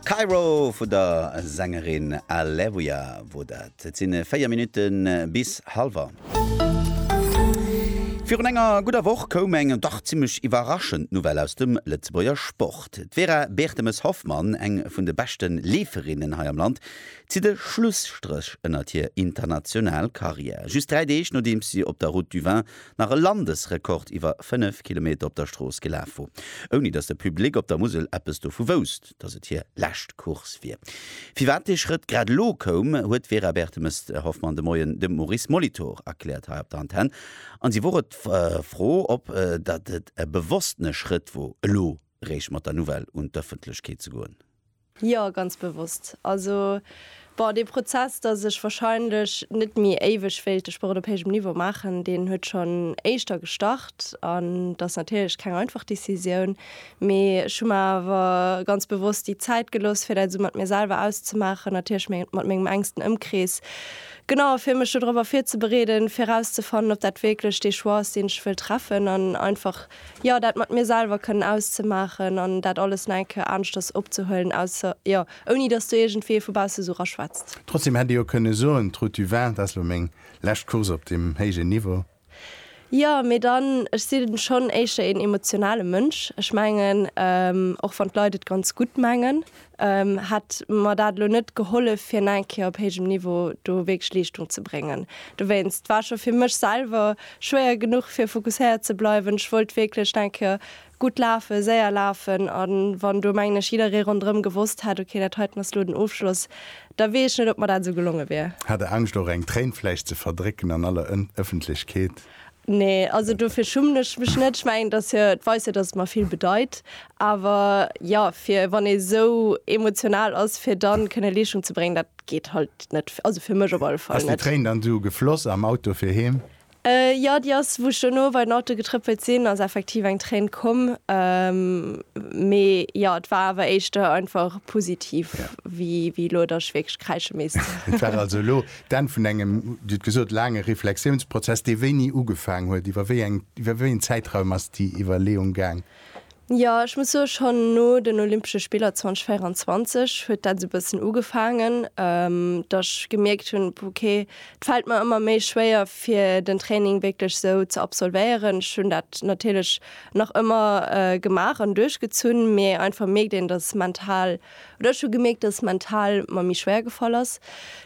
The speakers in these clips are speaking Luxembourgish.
Kairo vun der Sängerin Alevia wor dat. Et sinn 4 Minutten bis halwer. Virun enger gudder Woch koum eng dach zimmlech iwwerraschend Nouvelle aus dem Lëtzebuerger Sport. D'Vera Bertemes-Hoffmann, eng vun de beschte Leeferinnen hei am Land, zitt e Schlusstréch ënnert hir international Karriär. Just 3 Deeg nodeems si op der Route du Vin nach e Landesrekord iwwer 5 Kilometer op der Strooss gelaf wor, ouni datt de Public op der Musel eppes dovu wousst, datt et hir lescht Course wier. Firwat dee Schrëtt grad elo koum, huet d'Vera Bertemes-Hoffmann de Moien dem Maurice Molitor erkläert hei op der Antenn. An si wor et d'Fro, ob datt et e bewosstene Schrëtt wor, elo réischt mat der Nouvelle un d'Ëffentlechkeet ze goen. Jo, ganz bewosst. Also, bon, dee Prozess, dass ech wahrscheinlech net méi éiweg wéilt de Sport op héijem Niveau maachen, deen huet schonn éischter gestart. An et ass natierlech keng einfach Decisioun, mee ech hu mer awer ganz bewosst déi Zäit gelooss, fir dat esou mat mir selwer auszemaachen, natierlech mat mengem enksten Ëmkrees, genau, fir mech do drop ervir ze bereeden, fir erauszefannen, ob dat wierklech dee Choix ass, deen ech wëll treffen an einfach Jo, dat mat mir selwer kënnen auszemaachen an dat alles nach eng Kéier aneschters opzehuelen, ausser, jo, ouni dass do iergendwee vu bausse esou raschwätzt. Trotzdem hätt ee jo kënne soen, d'Route du Vin, dat ass elo meng lescht Course op deem héijen Niveau. Jo, mee dann, ech sinn schonn éischter een emotionale Mënsch. Ech mengen, och wann d'Leit et ganz gutt mengen, hätt mer dat elo net gehollef fir eng Kéier op héijem Niveau do wierklech Leeschtung ze bréngen. Dowéinst war scho fir mech selwer schwéier genuch fir fokusséiert ze bleiwen. Ech wollt wierklech eng Kéier gutt lafen, séier lafen a wann do mengen ech jidderee ronderëm gewosst hätt, ok dat heiten ass elo den Ofschloss, da weess ech net ob mer dat esou gelonge wier. Hat der Angscht och eng Tréin vläicht ze verdrécken an aller Ëffentlechkeet? Nee, also dofir schummen ech mech net. Ech mengen, dass hir, et weist jo, dass et mer vill bedeit. Awer jo, fir wann ee sou emotional ass, fir da kënne Leeschtung ze bréngen, dat geet halt net, also fir mech op alle Fall net. Ass déi Tréin dann du gefloss am Auto fir heem? Jo, déi ass, wou ech dono bei den Auto getrëppelt sinn, ass effektiv eng Tréin komm. Mee jo, et war awer éischter einfach positiv, wéi elo, dass ech wierklech kräische misst. Et war also elo D'Enn vun engem, Dir hutt gesot, laange Reflexiounsprozess, dee wéini ugefaang huet. Iwwer wéi eng, iwwer wéi een Zäitraum ass déi Iwwerleeung gaang? Jo, ech muss soen, schonn no den Olympesche Spiller 2024 huet dat esou e bëssen ugefaangen, datt ech gemierkt hunn, ok, et fält mer ëmmer méi schwéier fir den Training wierklech esou ze absolvéieren. Ech hunn dat natierlech nach ëmmer gemaach an duerchgezunn, mee einfach mierkt een, datt mental Oder ech hu gemierkt, dass et mental mer méi schwéier gefall ass.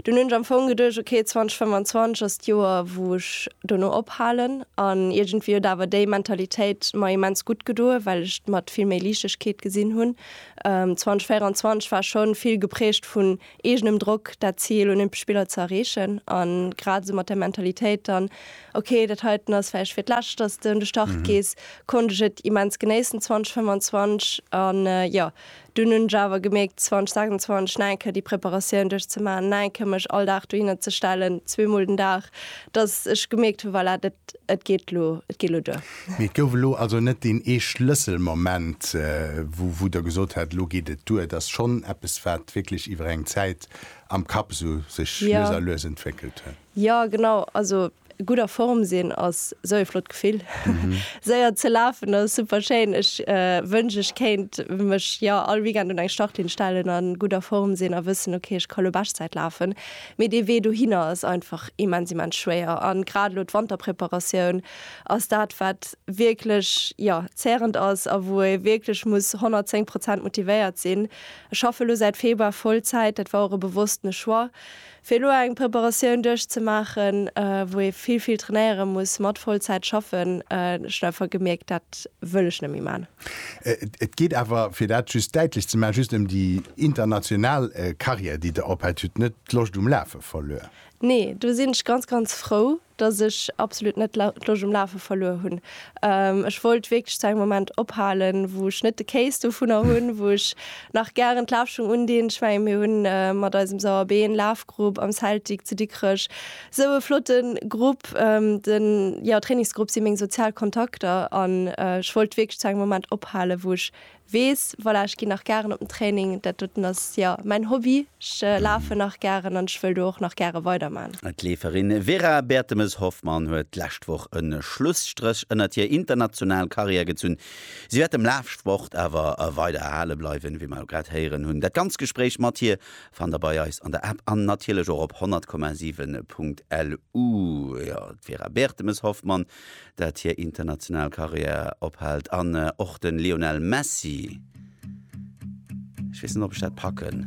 Dunn hunn ech am Fong geduecht, ok, 2025 ass d'Joer, wou ech dono ophalen. An iergendwéi huet awer déi Mentalitéit mer immens gutt gedoen, well ech d'mat vill méi Liichtegkeet gesinn hunn. 2024 war schonn vill geprägt vun eegenem Drock, dat Zil, Olympesch Spiller ze erreechen. An grad esou mat der Mentalitéit dann, ok, dat heiten ass vläicht fir d'lescht, dass de un de Start gees, konnt ech et immens genéissen 2025. An jo, Dunn hunn ech awer gemierkt, 2026 nach eng Kéier déi Preparatioun duerchzemaachen, nach eng Kéier mech all Dag dohinner ze stellen, zweemol den Dag, dass ech gemierkt hunn, voilà, dat, et geet elo, et geet elo duer. Mee et gouf elo also net deen ee Schlësselmoment, wou, wou Der gesot hätt, elo geet et duer. Et ass schonn eppes, wat wierklech iwwer eng Zäit am Kapp esou sech lues a lues entwéckelt huet. Jo, genau. Also, Gutt a Form sinn ass sou ee flott Gefill. Séier ze lafen ass super schéin. Ech wënsch ech kéint mech jo all Weekend un eng Startlinn stellen a gutt a Form sinn a wëssen ok ech ka lo Beschtzäit lafen. Mee dee Wee dohinner ass einfach immens immens schwéier a grad elo d'Wanterpreparatioun ass dat wat wierklech jo zährend ass a wou ee wierklech muss 110 Prozent motivéiert sinn. Ech schaffe lo säit Februar Vollzäit, dat war och e bewosstene Choix Fir elo eng Preparatioun duerchzemaachen, wou ee vill, vill trainéiere muss, mat Vollzäit schaffen, ech hunn einfach gemierkt, dat wëll ech net méi maachen. Et geet awer, fir dat just däitlech ze maachen, just ëm déi international Karriär, déi Der ophält. Dir hutt net d'Loscht um Lafe verluer? Nee, do sinn ech ganz, ganz frou, dass ech absolut net d'Loscht um Lafe verluer hunn. Ech wollt wierklech zu engem Moment ophalen, wou ech net de Kéiss dovunner hunn, wou ech nach gären d'Lafschung undinn. Ech mengen, mir hu mat eisem Sauer Been Lafgrupp am Celtic zu Dikrech esou e flotte Grupp. De jo, Trainingsgrupp si meng sozial Kontakter an ech wollt wierklech zu engem Moment ophalen, wou ech Weess, voilà, ech ginn nach gären op den Training, dat doten ass, jo, mäin Hobby, ech lafen nach gären an ech wëll do och nach gäre weiderman. D'Leeferin Vera Bertemes-Hoffmann huet d'lescht Woch e Schlusstréch ënnert hir international Karriär gezunn. Si wäert dem Lafsport awer weider erhale bleiwen, wéi mer elo grad héieren hunn. Dat ganz Gespréich mat hir fannt der bei eis an der App an natierlech och op 100,7.lu. Jo, d'Vera Bertemes-Hoffmann dat hir international Carrière ophält an och de Lionel Messi, ech weess net, ob ech dat packen.